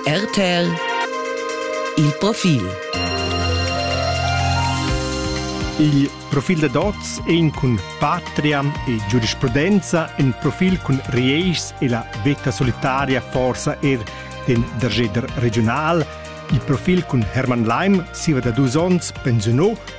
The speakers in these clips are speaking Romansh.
RTL Il profil Il profil da dots ein cun Patria e giurisprudenza in profil cun Rieirs e la veta solitaria forsa er den dergeder regional. Il profil cun Hermann Leim, siva da dus onns, pensionò,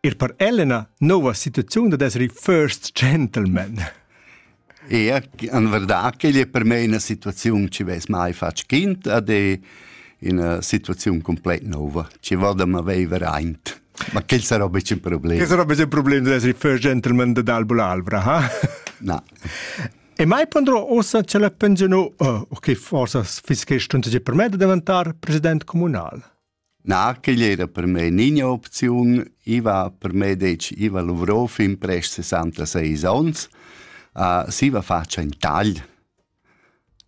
Ir per Elena nova situaziun da esser il first gentleman. Ja, en verdad che è per me una situazione che ves mai fatg kind ad è una situazione completa nuova, che vada ma vivere aint. Ma quel sarà un problema. Che sarà un problema di essere il first gentleman de Dalbula Alvra, ha? No. E mai pondrò ossa ce la pensionò, oh, che forse fischestunta per me da diventare president comunale. Na, quegl era per me nigna opziun. I va per me detg, i va luvrò fin prest sessantaseis ons. Uh, siva fatscha in tagl.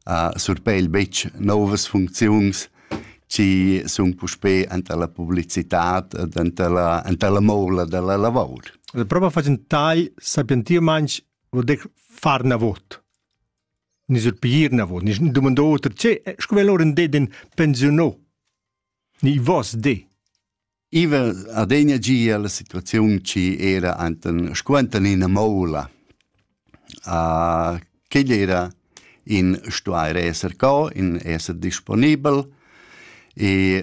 Uh, surpegl betg novas funcziuns chi sun puspè anta la publicitat ed anta la, anta la moula da la lavor. Proba facend tagl sapientiu manch vuol dir far navot. Ni sur piglier navot, ni dumando oter, tge, sco vel ora det in pensiunò? Ni vos de? Iva adegna gia la situaziun chi era enten scuenten ina moula. Uh, quegl era in stuair esser co, in esser disponibel e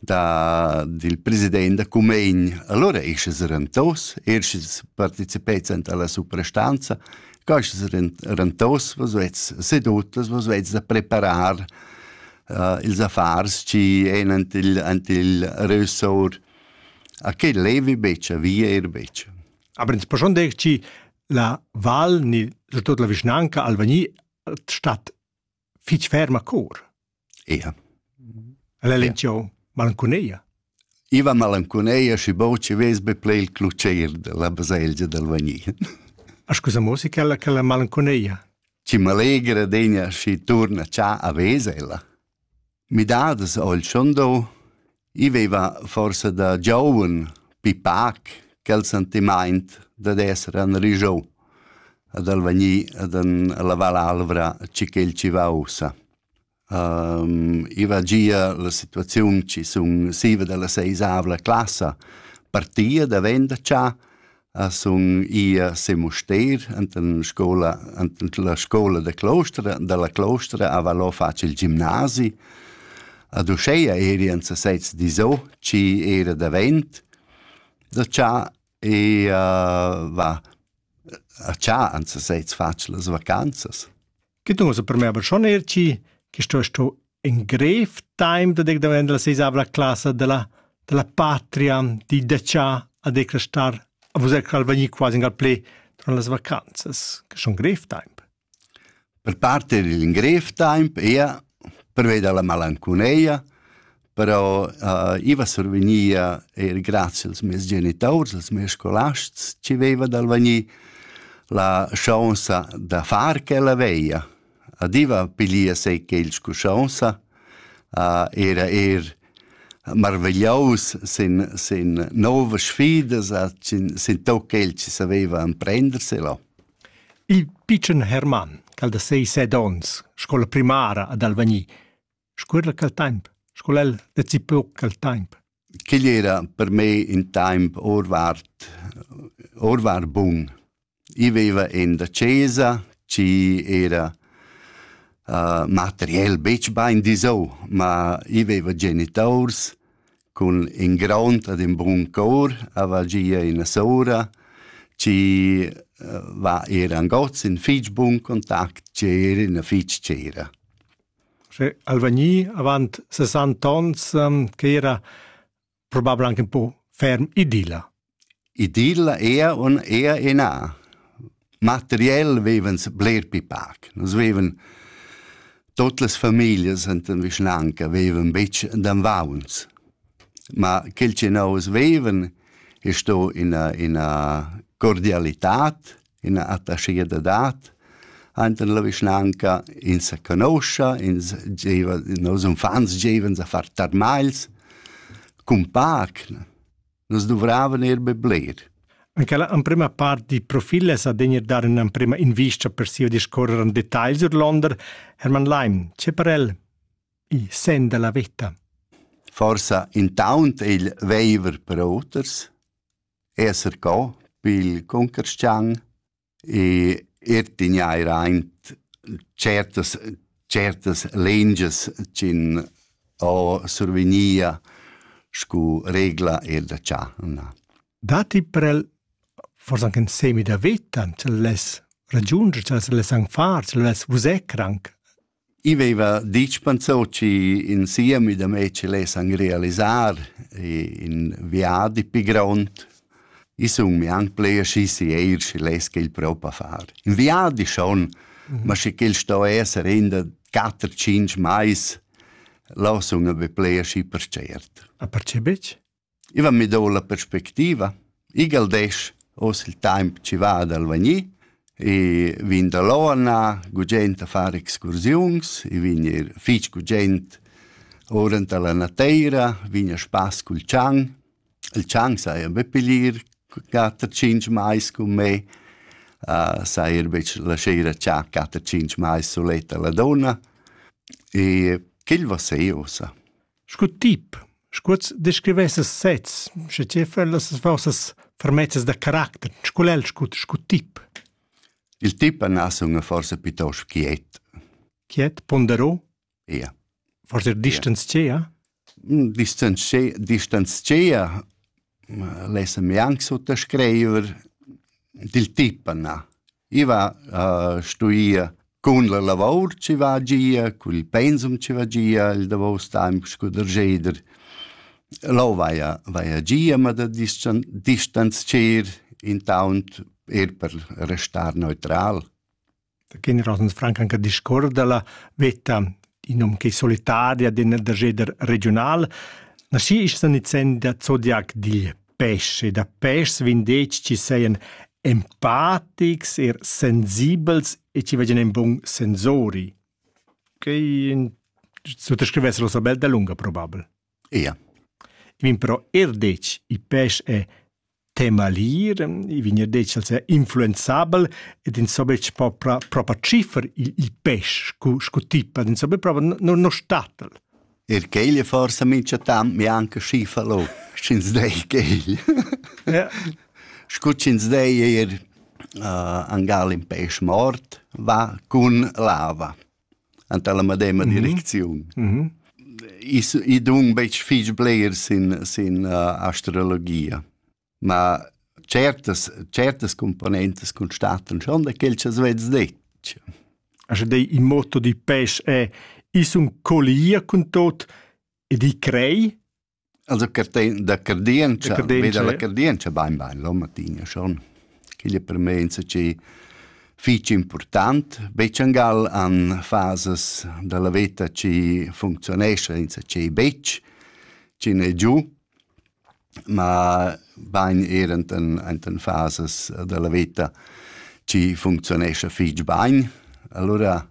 da dil president da Cumegn. Allora ei sches rentaus, er sches participet alla suprastanza, ca sches rentaus was vets sedutas, was vets da preparar uh, ils affars ci ein ant il, ant il ressor. A che levi beccia, via er beccia. Aber ins schon denkt ci la val ni tot la vischnanca Alvagni statt fitg ferma cor. Ia. El è lencio malancuneia. Iva malancuneia și bau ce vezi be plei il cluceir de la baselgia del Vagni. A scusa musica la che la malancuneia. Ci m'allegra degna și turna cia a vesela. Midadas ho il Schondau. I veiva forsa da gioun pipac quel sentimaint dad esser anrigiou, ad al vegnir ad an lavar l'alvra chi ch'el chi va ussa. I va gia la situaziun chi sun siva da la seisavla classa partia da venda cha, a sun i a se Musteir enten scola enten la scola de Clostra dalla Clostra a valò facil gimnasi ad uscheia eri en se sez di so ci era davent da cha e uh, va a cha an se sez facil las vacanzas che tu so per me aber schon erci che sto sto in grev time da dec davent la seisavla classa della della patria di decia a decrestar a vos cal venir quasi gal play tra las vacanzas che schon grev time per parte il grev time ia perveda la malanconeia però uh, iva survegnia eir grazie als meis genitaurs, als meis scolasts, ci veiva d'alvanir la chance da far quella veia. Adiva pilia sei quels cu chance, uh, era er marvegliaus sin, sin novas sfidas, sin, sin tot quel che saveva emprenderselo. Il pitschen Hermann, cal da sei set ons, scola primara ad Alvagni, Scuerla quel temp, sco el decipeu quel temp. Quel era per me in temp orvart, orvar bun. I veva en da chesa, ci era uh, materiel betg bain disau, ma i veva genitors cun in grond ad in bun cor, ava gia ina sora, ci uh, va era angoz in fitg bun contact, ci era ina fitg cera. Sche al vegni avant sessanta onns quei era probabel anche in po ferm idilla. Idilla era un era ina. Materiell vevens bler pli pac. Nus veven Tot las familias enten vischnanca veven betg d'anvauns. Ma quel che nous veven è sto ina, ina cordialitat ina attachia da dat Ainten la vischnanca ins sa conoscia, ins gieva, nos uffants givan a far tarmagls cun pac. Nus duvravan er be bler. Anche la prima part di profile sa degnir dar una prima invista per sia discorrer en detail sur Londra, Hermann Leim, c'è per el il sen della vetta? Forsa intaunt il veiver per oters, esser co pil cuncarschian e er tigneir aint certas certas lengias ch'in ho survegnia scu regla eir da cha na. Datti prel forsa anche in semi da vita, se less ragiunger, se less anche far, se less vusè cranc? I veva ditg Panzocci in siemi da mei che lessan realisar in viadi pi grond. I sun mi anc pli aschi sieir schi less quel propa far. In viadi schon, ma sche quel sto esser in da quatter cinc mais, la sun be pli aschi percert. A perce betg? I va mi dou la perspectiva. Igl desch oz il taimp chi va dal vagnir e vin da Lona, gugent a far excursiuns, i vin ir fich gugent ora anta la nateira, vin a spass cul tschang. Il tschang saja be pilir quatter tschinch mais cun me, uh, saja er betg la sera cha quatter tschinch mais suletta la donna. E quel va sei ossa. Scu tip, scu'ls descrivesses sezs, sche tge fa'l las vossas fermezzas da caracter, scu l'el scu, scu tip? Il tip anà suna forsa pitost quiet. Quiet, ponderò? Ia. Forsa distanzchea? Distanzchea, distanzchea l'essa mianc suttascriver dil tip na. I va a stuir cun la lavor chi va gia, cun il pensum chi va gia il davos temp scu darscheder. Lò vaja vaja gia, ma da distanzcher intaunt eir per restar neutral. Da generals han franc anche discuors dalla veta in num che solitaria d'in da jeder regional. Naschi isch san izen da zodiac digl pesce, da pes vin detg ci seien empatics er sensibels e ci vegen en bun sensori. Quei suttascrivessero sa bel da lunga probabel. Ia. Vin però er detg, i pes è tema lir, i vegna detg als è influenzabel ed ins so betg propra, propra ciffer il, il pes sco, sco tipa, ins so betg propra no, no statel. Er quegl forsa mincha tant mi anche schiffa lo, sch'ins dei quegl. ja. Scu sch'ins dei er uh, angal in pes mort va cun lava. anta la medema mm -hmm. direcziun. Mm -hmm. I dun betg fig bleiers in, in uh, astrologia, ma certas, certas componentes constatan schon da quel che svez detg. Also dei il motto di pes è, is un collier con tot ed i crei, Also da cardientscha, veda la cardientscha bain bain l'on matin, schon. Quella per me è insatgi fitg important. Becciangal han fases dalla veta che funzionesce insatgi betg, che ne giù, ma bain er in fases dalla veta che funzionesce fitg bain. Allora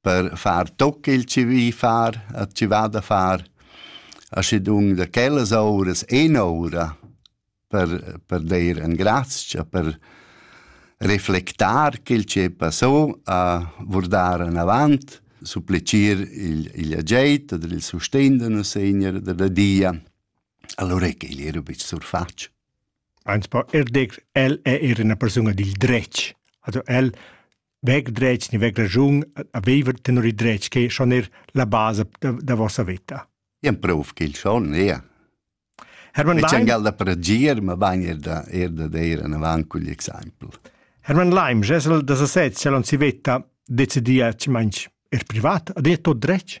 per far toc il civì far, a ci va da far aschedun da quellas ouras en oura per, per dir en grazia, per reflectar quel che passò, a vurdar en avant, supplicir il, il ageit oder il sustegn da nos Segner da la Dia. Allora che igl era bic surfatg. Ans po er dir el è era una persona dil dretg. Also el vec dretg ni vec ragiun a viver tenor il dretg che schon er la base da, da vossa vita. Ien proof ch'il schon è. Hermann Leim. C'è angal da pregir, ma bagn er da, er da dire en avanti cugl exempel. Hermann Leim, gesel da sasez, c'è l'on si vetta, decidia ci manch er privat, ha detto dretg?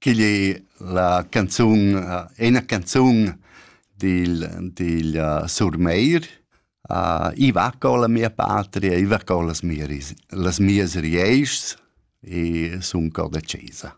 Quigl ei la canzun ena canzun dil dil Surmeir. I va colla mia patria, i va collas mia ris- las mias rieischs e sun co decisa.